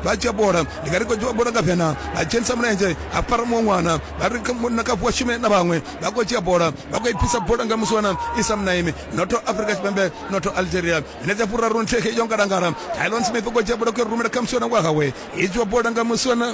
vha dzhia bola ndi nga ri khou dzhia bola nga vhena vha dzhenisa mulenzhe ha fara muṅwe ṅwana vha ri munna kafu wa shume na vhaṅwe vha khou dzhia bola vha khou i bvisa bola nga musi wana i sa munaimi notho afrika tshipembe notho algeria minetse furaru nthihi yo ngalangala tylon smith u khou dzhia bola khou rumela kha musi wana wa hawe i dzhiwa bola nga musi wana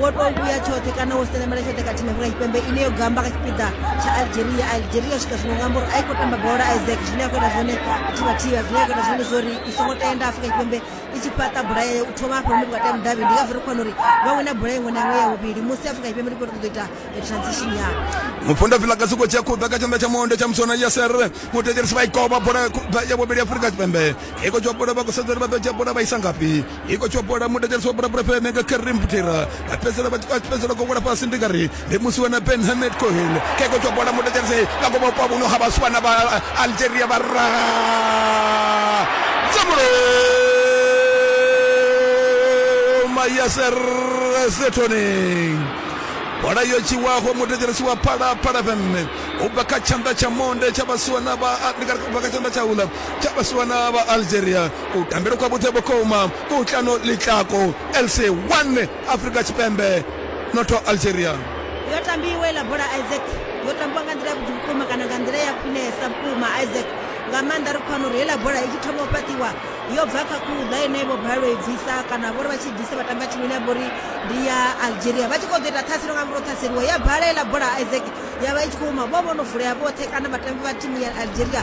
wo tou vhuya tshoṱhe kana wo selemela tshoṱhe kha thimu ya tshipembe ine yo gamba kha tshipiḓa tsha algeria algeria swika zwino nga mbori a i khou tamba bola isaac zwine a khou ita zwone thivhathiva zwine a khou ita zwone zwori i songo tenda afrika tshipembe i tshi fhaṱa bola yayo u thoma afho hune vhukati ha mudavhi ndi ngazwo ri khona uri vha wina bola iṅwe na iṅwe ya vhuvhili musi afrika tshipembe ri khou ṱoḓa ita transition yao mufunda vila ka siko tshi a khuḓa kha tshanḓa tsha monde tsha musona ya serre mutekerisi vha i koba bola ya vhuvhili afrika tshipembe i khou dzhia bola vha khou sedza uri vha ḓo dzhia bola vha isa ngafhi i khou tsho bola mudedzedzo wa bola bola fhele nga Karim Butera a fhedzela vha tshi fhedzela go wela fhasi ndi ngari ndi musi wana Ben Hamed Cohen ke khou tsho bola mudedzedzo nga ngomu kwa vhuno ha vhaswana vha Algeria vha ra tsambulo Mayaser Zetoning bola yo tshiwaho mudedzedzo wa phala phala fm u bva kha tshanḓa tsha monde tsha vhaswana vha ndi ngari u bva kha tshanḓa tsha ula tsha vhaswana vha Algeria kutambele kwa vhuḓe vhukuma kutlano ḽitlako lc 1 afrika tshipembe notho algeria yo tambiwa iḽa bola isaac yo tambiwa nga nḓila ya vhuḓi vhukuma kana nga nḓila ya khwinesa vhukuma isaac nga maanḓa ri khou wana uri heiḽa bola i tshi thoma u fhaṱiwa yo bva kha khuḓa ine vho balelwa i bvisa kana vhori vha tshi bvisa vha tamba thimu ine ya vhori ndi ya algeria vha tshi khou ḓo ita ṱhaselo nga muro ṱhaseliwa ya bala heiḽa bola isaac ya vha i tshi khou huma vho vho no vulea vhoṱhe kana vhatambi vha thimu ya algeria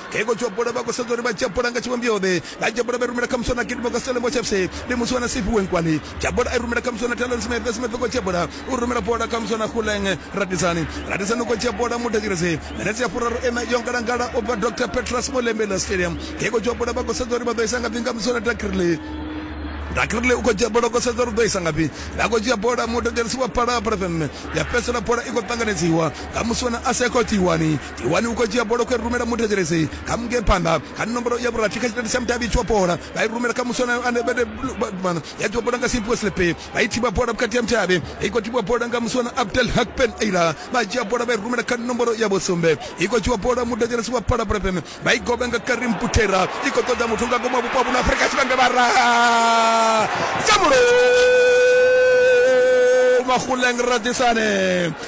He khou tshopula, vha khou sedza uri vha tshopula nga tshivhumbio-ḓe. Vha tshopula vha i rumela kha muswa na gidimo kha Stellenbosch FC. Ndi muswa na Sifi Wenkwali. Tshopula i rumela kha muswa na Talon Smith. Smith u khou tshopula, u rumela bola kha muswa na Kgoleng Radisane. Radisane u khou tshopula, mu thetshelese. Minetse ya furaru iṋa yo ngalangala u bva Doctor Petrus Molembela Stadium. He khou tshopula, vha khou sedza uri vha ḓo isa ngafhi nga muswa na Dakirle. Dakirle u khou dzhia bola, u khou sedza uri u ḓo isa ngafhi. Vha khou dzhia bola, mu thetshelesi wa Phalaphala FM. Ya fhedzisela bola i khou ṱanganedziwa nga muswa na Asekho Tiwani. iwani u khou dzhia bola khou rumela muthetshelesi kha munge phanḓa kha nomboro ya vhurathi kha tshitende tsha mudavhi tshiwa bola vha i rumela kha muswana ya dzhiwa bola nga simpiwe slepe vha i thiba bola vhukati ya mudavhi i khou thibiwa bola nga muswana abdel hakpen aila vha dzhia bola vha i rumela kha nomboro ya vhusumbe i khou dzhiwa bola muthetshelesi wa palabrepem vha i goba nga karim putera i khou ṱoḓa muthu nga ngomu wa vhupo ha vhuno afrika tshipembe vhara samulo mahuleng radisane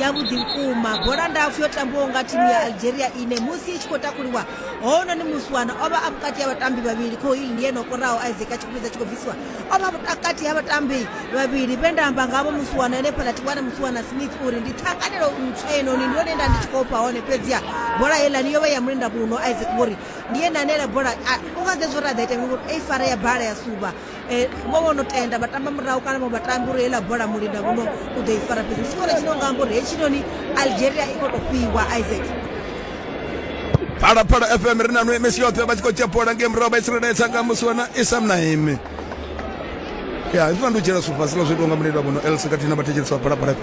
yavhuḓi vhukuma bola ndapfu yo tambiwaho nga thimu ya algeria ine musi i tshi khou takuliwa hounoni muswana o vha a vhukati ha vhatambi vhavhili khohili ndi ene o koraho isaac a tshi khupedza tshi khou bvisiwa o vha vhukati ha vhatambi vhavhili vhe nda amba ngavho muswana ene fhaḽa tiwana muswana smith uri ndi thanganelo ntswa enoni ndi yone nda ndi tshi khou fha hone fhedziha bola heilani yo vha ya mulenda muno isaac ngori ndi ene ane la bola u nga zezwo ra ḓa ita ngori ei fara ya bala ya suba um vho vho no tenda vha tamba murahu kana vho vhatambi uri heiḽa bola mulinda vhono u ḓo i fara fhedzi tshikoro tshino nga amba uri hetshinoni algeria i khou tou fhiwa isaac phalaphala fm ri na nwe mesi yoṱhe vha tshi khou dzhia bola ngei murahu vha i tsireledza nga musi wana isam na imi ya ndi funa ndi u dzhiela sufasi nga zwo itiwa nga muleli wa vhono elsa khathihi na vhathetshelesi vha phalaphala fm